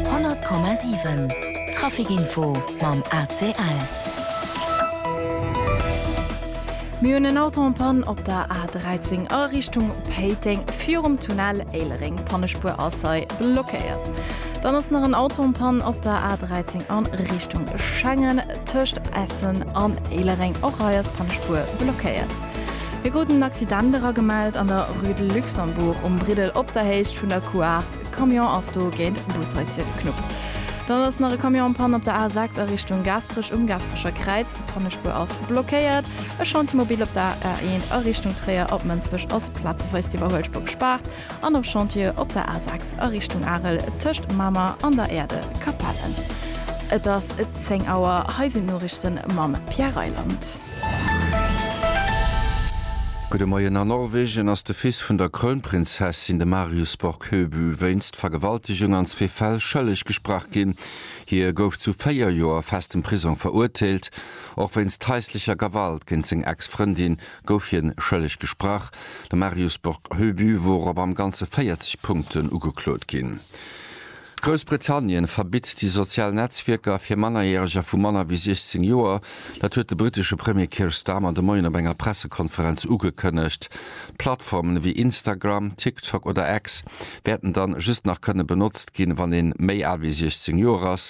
100,7 Trafic-Info mam ACL. Mir hunn en Auto en Panne op der A13 a Richtung Péiteng virum Tunnel Éilereng. D'Pannespuer ass hei blockéiert. Dann ass nach en Auto en Panne op der A13 a Richtung Schengen tëscht Essen an Éilereng. Och hei ass d'Pannespuer blockéiert. Hie krut en Accident era gemellt an der Rue de Luxembourg um Briddel op der Héicht vun der Couart. E Camion ass do géint Bushaissie geknuppt. Dann ass nach e Camion am Panne op der A6 a Richtung Gaasperech um Gaasperecher Kräiz. D'Pannespuer ass blockéiert. E Chantier mobile op der A1 a Richtung Tréier op Mënsbech ass plazeweis d'iwwerhuelspur gespaart. An op Chantier op der A6 a Richtung Arel tëscht Mamer an der Erde Capelle. Et ass 10 Auer, hei sinn d'Noriichte mam Pierre Reyland. Gudde Moien, A Norwegen ass de Fils vun der Krounprinzessin, de Marius Borg Høby, wéinst Vergewaltegung an zwee Fäll schëlleg gesprach ginn. Hie gouf zu véier Joer festem Prisong verurteelt, och wéinst haislecher Gewalt géint seng Ex-Frëndin gouf hien schëlleg gesprach. De Marius Bock-Heubu wor op am Ganze 40 Punkten ugeklot ginn. Groussbritannien verbitt déi sozial Netzwierker fir Mannerjäreger vu manner wéi 16 Joer. Dat huet de brittesche Premier Keir Starmer de Moien op enger Pressekonferenz ugekënnegt. Plattformen ewéi Instagram, TikTok oder X wäerten dann just nach kënne benotzt ginn, wann een méi al wéi 16 Joer ass.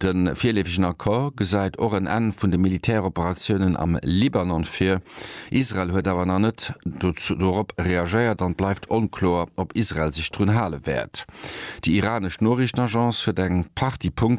De virleefegen Accord gesäit och en Enn vun de Militäroperatiounen am Libanon vir. Israel huet awer nach net dorop reagéiert an et bleift onkloer, ob Israel sech drun hale wäert. Déi iranesch Noriichtenagence huet eng Partie Punkten,